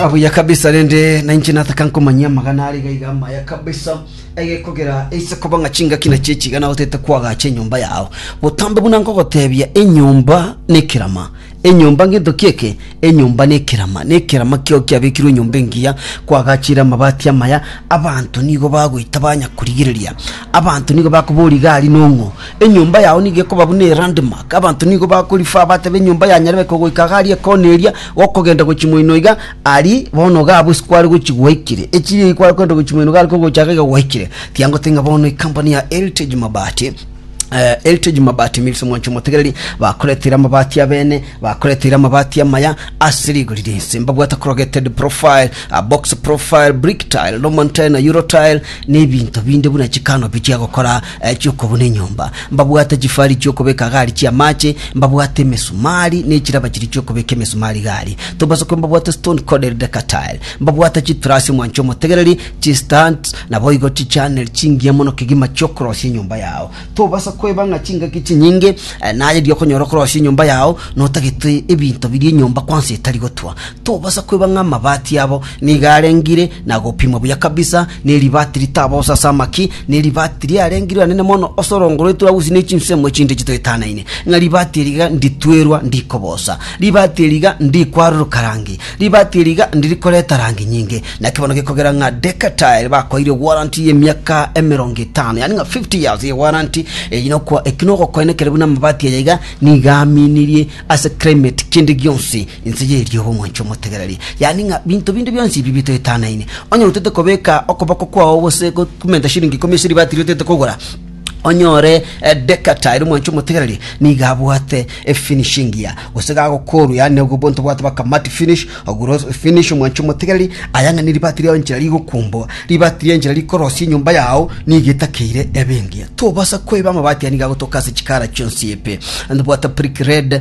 abuya kabisa rende nainche nataka nkomanyia amagana are gaiga amaya kabisa egekogera eise koba ng'a chingaki na chechiga nago tete kwagacha enyomba yao botambe buna nkogotebia enyomba nekerama enyomba ngento kieke enyomba nekerama nekerama kio kiabekirwe enyomba engiya kwagachire amabati amaya abanto nigo bagoita banya korigereria abanto nigo bakobori gari nong'o Enyomba yao nigo ekoba buna elandmark, abanto nigo bakorifaa, batebe, Enyomba ya Nyarebeka ogoika iga aria ekona eria, gokogenda gochia moino iga, ari bono iga abwo ase kware gochia gwaikire. Echiria eyi kware kogenda gochia moino iga ari kogocha iga iga gwaikire. Tiangote ng'a bono ekampani ya Heritage Mabati, eh, Heritage Mabati Mills Mwancha Omotegereri, bakoreteire amabati abene, bakoreteire amabati amaya ase rigori rinse. Mbabwate corrugated profile, ah, box profile, brick tile, Norman tile na Euro tile, na ebinto binde buna chicanopi chia gokora Achia okobuna enyomba, mbabwate chifari chi'okobeka gari chi'amache, mbabwate emesumari, ne chiraba chiria chi'okobeka emesumari gari, tobasokwe mbabwate stone corded decatile, mbabwate chitrasi omwanche omotegereri, chistands, naboigo chichannel chingiya mono kegima chi'okorosia enyomba yao. Tobasa koeba ng'a chingaki chinyinge naye erio okonyora okorosia enyomba yao notagete ebinto biria enyomba kwansa etari gotwa. Tobasa koeba ng'a amabati abo nigo arengire na gopimwa buya kabisa, ne ribati ritabosa ase amaki, Ne ribaati riarenge riranene mono ase orongo rwa Eturausi ne chinsemo echinde chitoetanaine, ng'a ribaati eri iga nditwerwa ndikobosa, ribaati eri iga ndikwaruruka rangi, ribaati eri iga ndiri koreta rangi nyinge. Naki bono gekogera ng'a Decatur bakoeire ewaranti y'emiaka emerongo etano, yaani ng'a 50 years ye waranti eyio, nokwa eki nogokoina ekere buna amabaati aya iga nigo aaminirie ase climate kende gionsi Inse y'erio b'omwancha omotegereri, yaani ng'a binto binde bionsi ebi bitoetanaine. Onye otete kobeka okoboko kwao gose gokumenta shilingi ikomi ase ribaati riotete kogora, onyore Decatur omwancha omotegereri nigo abwate efinishing gear, gose gagokorwa, yaani obwo obwo ntobwate baka matte finish, ogure finish omwancha omotegereri, aya ng'a neribaati riao enchera rigokumbwa, ribaati ria enchera rikorosia enyomba yao nigo etakeire ebe engiya. Tobasa koiba amabaati aya nigo agotoka ase chikara chionsi epe. Ntobwate brick red,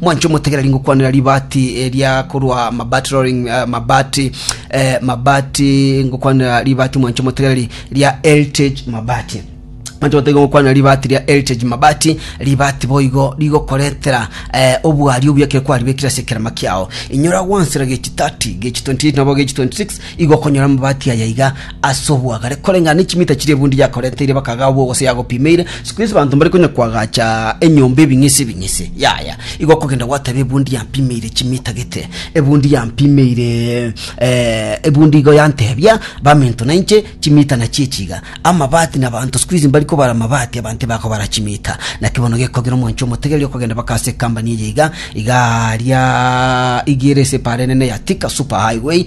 Mwanche omotegereri ngokwanera ribaati ria korwa Mabati Rolling eh, Mabati eh, Mabati ngokwanera ribaati mwanche omotegereri ria Heritage Mabati mwanche omotegereri ngokwanera ribaati ria Heritage Mabati ribaati boigo rigokoretera eh, obwari obuya kere kwaribekire ase ekerema kiao inyora gwansera gechi 30 gechi 28 nabo gechi 26 Igo okonyora amabati aya iga ase oboagare, koreng'ana ne chimita chiria ebundi yakoreteire bakagaa obwogo gose yagopimeire. Siku ense abanto mbare konya koagacha enyomba ebing'ese ebing'ese. Yaya, igo okogenda gwateba ebundi yampimeire chimita gete, ebundi yampimeire eh, ebundi igo yantebia baminto nainche chimita nachio echi iga. Amabati na abanto siku hizi mbari kobara amabati abanto tibari kobara chimita. Naki bono gekogera omwancho omotegereri okogenda baka ase ekambani eye iga, iga aaria iga ere ase epaara enene ya Thika Super Highway,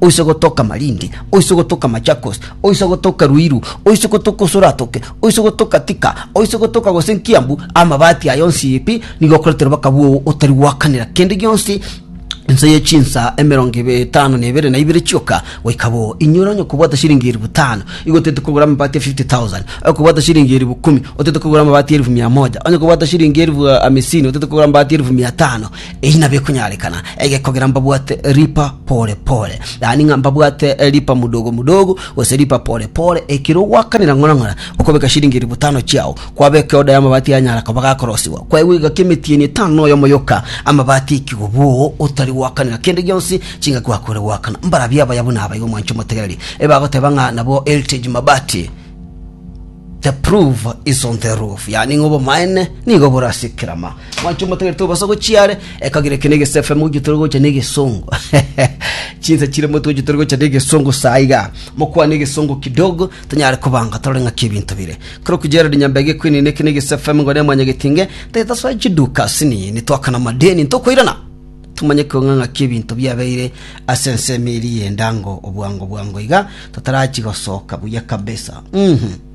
oise gotoka Malindi, oise gotoka Machakos, oise gotoka Ruiru, oise gotoka Usuratoke, oise gotoka Thika, oise gotoka gose Nkiambu, amabati aye onsi pi, nigo okoretera obwaka bw'ogo otari goakanera kende gionsi ense ye chinsa emerongo ebe- etano na ebere na ibere chioka goika bo. Inyora onye okobwata shilingi eribu tano, igo otaete kogora amabati ya 50,000. Okobwata shilingi eribu kumi, otaete kogora amabati ya erifu mia moja. Onye okobwata shilingi erifu ah, amisini, otaete kogora amabati ya erifu mia tano. Eyi nabwo ekonyarekana ege kogera mbabwate ripa pore pore, yaani ng'a mbabwate ripa mudogo mudogo, gose ripa pore pore, ekero ogwakanera ng'ora ng'ora okobeka chiringi elfu tano chiao, kwabeka eoda y'amabati yanyara koba gakorosiwa, kwaigwa egaki emetienyi etano na oyomo yoka, amabati ekigo boo, otari gwakanera kende gionsi, chingaki gwakore gwakana. Mbarabwo abaya buna aba igo mwanche motegereri, ebagoteba ng'a nabwo Heritage Mabati. The proof is on the roof, yani ng'a obomaene nigo bore ase ekerama. Mwancho omotegerete obasa gochia are, ekagera eke negese FM oyio tore gocha negesongo. Chinsa chire moto oyio tore gocha negesongo saa iga. Mokwane egesongo kidogo, tonyare kobanga torore ng'aki ebinto bire. Kero ku Gerald Nyambege ekwinini eke negese FM ngore mwanyagetinge, tetasoa chiduka asini nitwakana madeni ntokoirana. Tomanye kong'a ng'aki ebinto biabeire ase ensemo eria y'endango obwango bwango iga, totarachia gosoka buya kabisa. Uhm.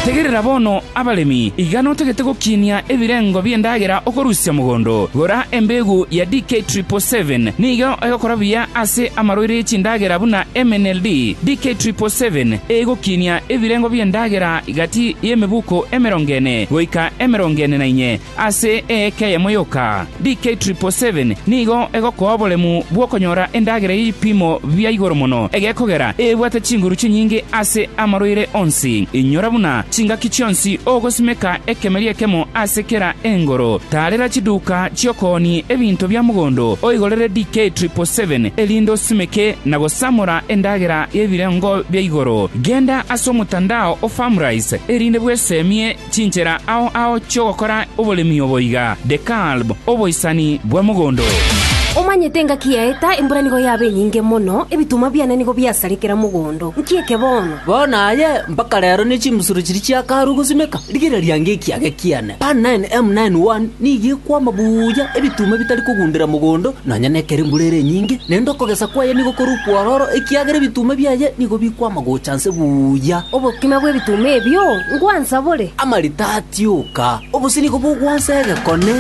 Tegerera bono, abaremi, iga notagete gokinia ebirengo bi'endagera okorusia mogondo. Gora embeegu ya DK Triple Seven, nigo egokora buya ase amaroiro ye chindagera buna MNLD. DK Triple Seven egokinia ebirengo bi'endagera Egati y'emebuko emerongo ene goika emerongo ene na inye ase eeka eyemo yoka, DK777 nigo egokoa oboremu bw'okonyora endagera y'ebipimo bia igoro mono egekogera ebwate chinguru chinyinge ase amarwaire onsi. Inyora buna chingaki chionsi ogosimeka ekemeri ekemo ase kera engoro. Taarera chiduka chi'okoonia ebinto bia mogondo oigorere DK777 erinde osimeke na gosamora endagera y'ebirengo bia igoro, genda ase omotandao o Farmrise, erinde bwesemie chinchera ao ao chi'ogokora oboremi obo iga, Dekalb, oboisani bwa mogondo. Omanyete engaki yaeta, embura nigo yaba enyinge mono, ebituma biane nigo biasare kera mogondo. Nki eke bono? Bono aye mpaka rero ne chimbusuro chiria chiakarwa gosimeka, rigereria ngekiage kiane. Omonene, Omonene one, nigo ekwama buya ebituma bitari kogundera mogondo, nonya nekero embura ere enyinge, naende okogesa kwaye nigo kore okwororo, ekiagera ebituma biaye nigo bikwama gocha nse buya. Obokima bw'ebituma ebio ngwansa bore. Amarita atioka, obosio nigo bogwansa egekone.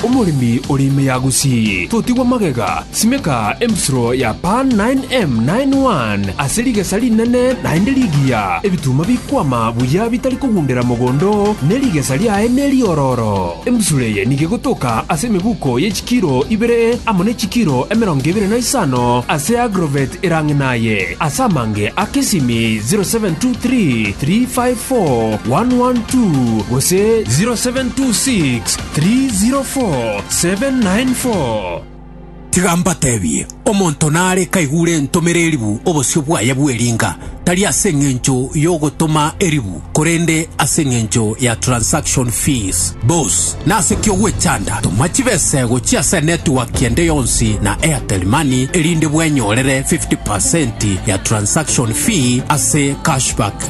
Omoremi ore ime ya Gusii, totigwa magega, simeka embusuro ya Pan 9M 91 ase rigesa rinene naende rigiya, ebituma bikwama buya bitari kogundera mogondo, ne rigesa riaye neriororo. Embusuro eye nigo egotoka ase emebuko ye chikiro ibere amo ne chikiro emerongo ebere na isano ase agrovet erang'ina aye, ase amange a kesimi 0723 354 112 gose 0726 304794. Tiga mbatebie, omonto nare kaigure entomera eribu obosio bwaye bw'eringa, tari ase engencho y'ogotoma eribu, korende ase engencho ya transaction fees. Bos, nase ki ogwechanda? Toma chibesa ego chia ase network ende yonsi na Airtel Money erinde bwenyorere 50% ya transaction fee ase cashback.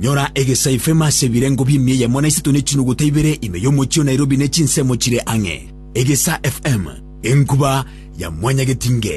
Nyora egesaife ime ase ebirengo bi'emiya yamo na isato ne chinuguta ibere ime y'omochie o Nairobi ne chinsemo chire ang'e. Egesa FM, enkuba ya mwanyagetinge.